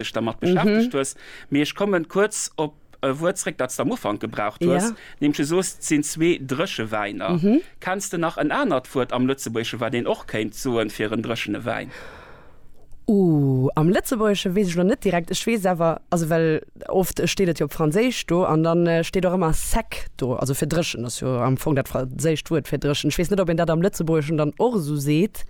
dech dermat beschäftegt hues, mee ech kommen kuerz op e Wuert zréck, dat s de am Ufank gebraucht hues, nämlech du soos, et sinn zwee Dréchewäiner. Kenns de nach en anert Wuert am Lëtzebuergesche, wat een och kéint soen fir en dréchene Wäin? Uh, am Lëtzebuergesche weess ech elo net direkt. Ech weess awer, also well oft steet et jo op Franséisch do an da steet och ëmmer sec do, also fir dréchen, ass jo am Fong dat franséischt Wuert fir dréchen. Ech weess net, ob een dat am Lëtzebuergeschen dann och esou seet.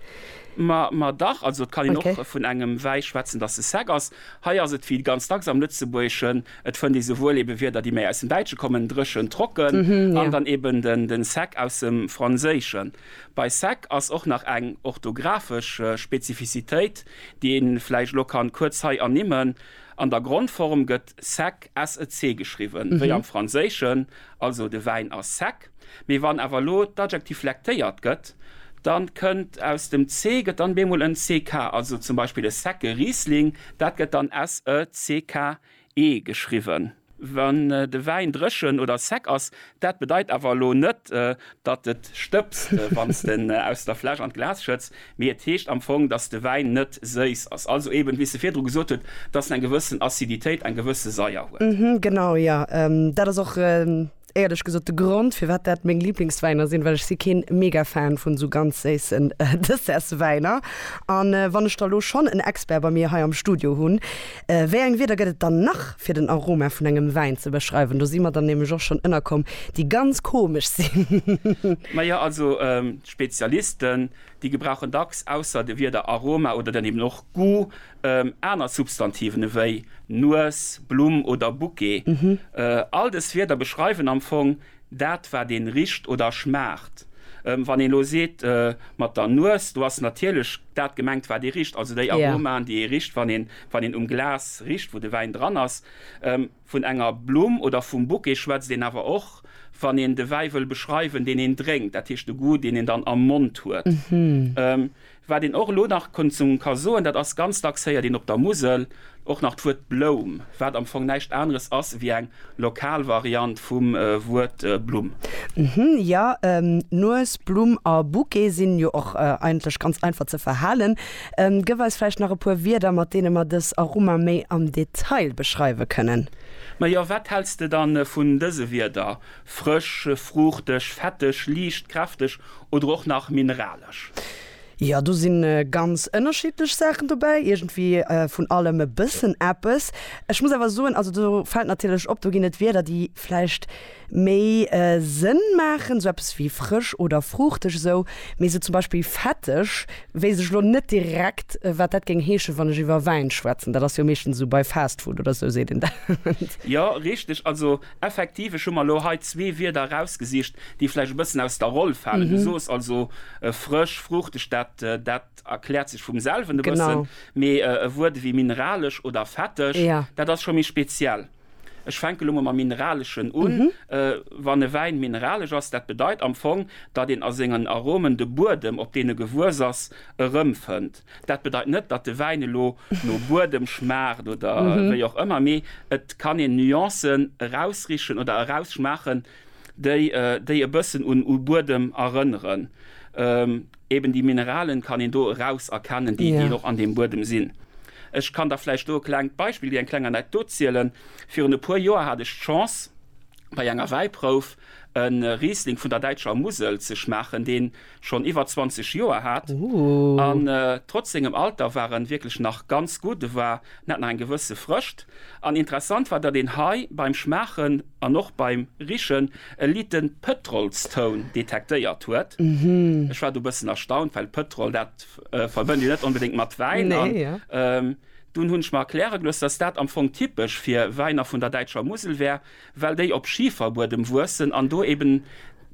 Ma, ma dach, also et kann een och vun engem Wäi schwätzen, datt e sec ass. Hei ass et wéi ganz dacks am Lëtzebuergeschen, et fënnt ee souwuel ebe Wierder, déi méi aus dem Däitsche kommen, dréchen, trocken, an dann eben den sec aus dem Franséischen. Bei sec ass och nach eng orthographesch Spezifizitéit, déi ee vläicht elo kann kuerz hei ernimmen, An der Grondform gëtt sec, sec geschriwwen, wéi am Franséischen, also de Wäin ass sec. Mee wann awer elo d'Adjektiv lektéiert gëtt, da kënnt aus dem ce gëtt dann bemol en ck, also zum Beispill e secke Riesling, dat gëtt dann s-e-c-k-e geschriwwen. Wann de Wäin dréchen oder sec ass, dat bedeit awer elo net, datt et stëbst, wann s d'en aus der Fläsch an d'Glas schëtts, mee et heescht am Fong, datt de Wäin net séiss ass, also eben, wéi s de virdru gesot hutt, datt en eng gewëssen Aciditéit, eng gewësse Saier huet. Genau, jo, dat ass och Éierlech gesot, de Grond firwat dat meng Lieblingswäiner sinn, well ech si keen mega Fan vun esou ganz séissen Dessertswäiner. An wann ech der elo schonn en Expert bei mir hei am Studio hunn, wéi eng Wierder gëtt et dann nach fir den Aroma vun engem Wäin ze beschreiwen? Do si mer dann nämlech och schonn ënnerkomm, déi ganz komesch sinn. Naja, also d'Spezialisten, déi gebrauchen dacks ausser de Wierder Aroma oder dann eben och Goût Aner Substantiven ewéi Nues, Blumm oder Bouquet, all dës Wierder beschreiwen am Fong dat, wat een richt oder schmaacht. Wann een elo seet mat der Nues, do ass natierlech dat gemengt, wat ee richt, also déi Aromaen, déi ee richt, wann een um Glas richt, wou de Wäin dran ass. Vun enger Blumm oder vum Bouquet schwätzt een awer och, wann een de Wäi wëll beschreiwen, deen een drénkt, dat heescht de Goût, deen een dann am Mond huet. Wat een och elo nach ka soen, dat ass, ganz dacks héiert een op der Musel och nach d'Wuert Bloum, wat am Fong näischt aneres ass ewéi eng lokal Variant vum Wuert Blumm. Jo, Nues, Blumm a Bouquet sinn jo och eigentlech ganz einfach ze verhalen. Gëff eis vläicht nach e puer Wierder, mat deene mer dës Aroma méi am Detail beschreiwe kënnen. Majo, wat häls de dann vun dëse Wierder, frësch, fruuchteg, fetteg, liicht, kräfteg oder och nach mineralesch? Jo, do sinn ganz ënnerschiddlech Saachen dobäi, iergendwéi vun allem e bëssen eppes. Ech muss awer soen, also do fält natierlech op, do ginn et Wierder, déi vläicht. méi Sënn maachen, sou eppes wéi frësch oder fruuchteg esou, mee sou zum Beispill fetteg weess ech elo net direkt wat dat géing heeschen, wann ech iwwer Wäin schwätzen, dat ass jo meeschtens esou bei Fast Food oder esou seet een dat. Jo richteg, also effektiv ech hu mer elo hei zwee Wierder erausgesicht déi vläicht e bëssen aus der Roll falen. Du soos also frësch, fruuchteg, dat dat erkläert sech vum selwen e bëssen, mee e Wuert ewéi mineralesch oder fetteg, dat ass scho méi speziell. Ech fänke lo mol mam Mineraleschen un. Wann e Wäin mineralesch ass, dat bedeit am Fong, datt een a sengen Aromen de Buedem, op deen e gewuess ass, erëmfënnt. Dat bedeit net, datt de Wäin elo no Buedem schmaacht oder wéi och ëmmer, mee et kann een Nuancen erausrichen oder erausschmaachen, déi e bëssen u Buedem erënneren. Eben déi Mineralen kann een do eraus erkennen, déi déi och an deem Buedem sinn. Ech kann da vläicht do e klengt Beispill, eng kleng Anekdot zielen. Virun e puer Joer hat ech d'Chance bei enger Wäiprouf e Riesling vun der däitscher Musel ze schmaachen, deen schonn iwwer 20 Joer hat an trotz sengem Alter war en wierklech nach ganz gutt. E war, en hat nach eng gewësse Frëscht an interessant war, datt een hei beim Schmaachen, an och beim Richen e liten Pëtrolstoun detektéiert huet. Ech war do bëssen erstaunt, well Pëtrol, dat verbënnt een net onbedéngt mat Wäin. An dunn hunn ech mer erkläre gelooss, dass dat am Fong typesch fir Wäiner vun der däitscher Musel wär, well déi op Schiferbuedem wuessen an do eben,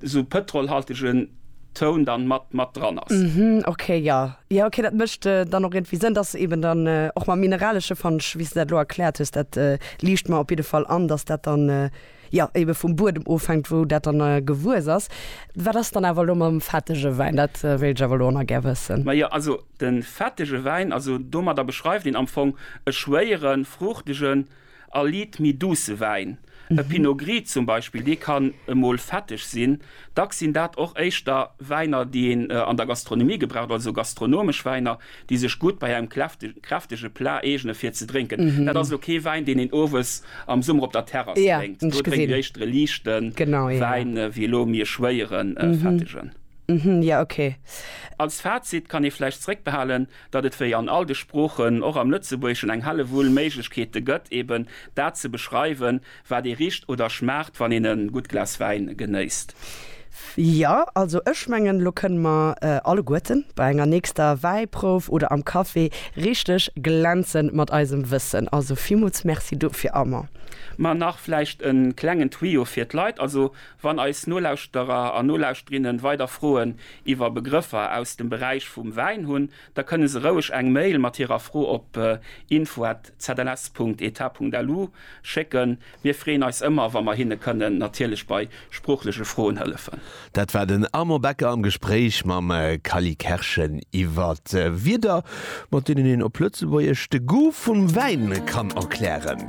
Esou pëtrolhaltegen Toun dann mat mat dran ass. Mhm, ok, jo. Jo, ok, dat mécht dann och iergendwéi Sënn, dass eben dann och mam Mineralesche fand ech, wéi s de dat elo erkläert hues, dat liicht mer op jidde Fall an, dass dat dann jo ebe vum Buedem ofhänkt, wou dat dann gewuess ass. Wat ass dann awer elo mam fettege Wäin? Dat wéilt ech awer elo och nach gär wëssen. Majo, also de fettege Wäin, also domadder beschreift een am Fong e schwéieren, fruuchtegen, A Liit méi douce Wäin, e Pinot Gris zum Beispill, dee kann emol fetteg sinn. Dacks sinn dat och éischter Wäiner, déi een an der Gastronomie gebraucht, also gastronomesch Wäiner, déi sech gutt bei engem kräftege Plat eegene fir ze drénken. Dat ass elo kee Wäin, deen een owes am Summer op der Terrass drénkt. Do drénkt een éischter e liichte Wäin, wéi elo méi e schwéieren, fettegen. Als Fazit kann ee vläicht zeréckbehalen, datt et wéi an all de Sproochen och am Lëtzebuergeschen eng Hellewull Méiglechkeete gëtt, eben dat ze beschreiwen, wat ee richt oder schmaacht, wann een e gutt Glas Wäin genéisst. Jo, also ech mengen, elo kënne mer alleguerten bei enger nächster Wäiprouf oder am Café richteg glänze mat eisem Wëssen. Also villmools Merci dofir, Armand. Ma nach vläicht e klengen Tuyau fir d'Leit. Also Wann eis Nolauschterer an Nolauschterinnen weider Froen iwwer Begrëffer aus dem Beräich vum Wäin hunn, da kënne se roueg eng Mail mat hirer Fro op info@zls.eta.lu schécken. Mir freeën eis ëmmer, wa mer hinne kënnen natierlech bei sproochleche Froen hëllefen. Dat war den Armand Becker am Gespréich mam Cally Kerschen iwwer Wierder, mat deenen een op Lëtzebuergesch de Goût vum Wäin kann erklären.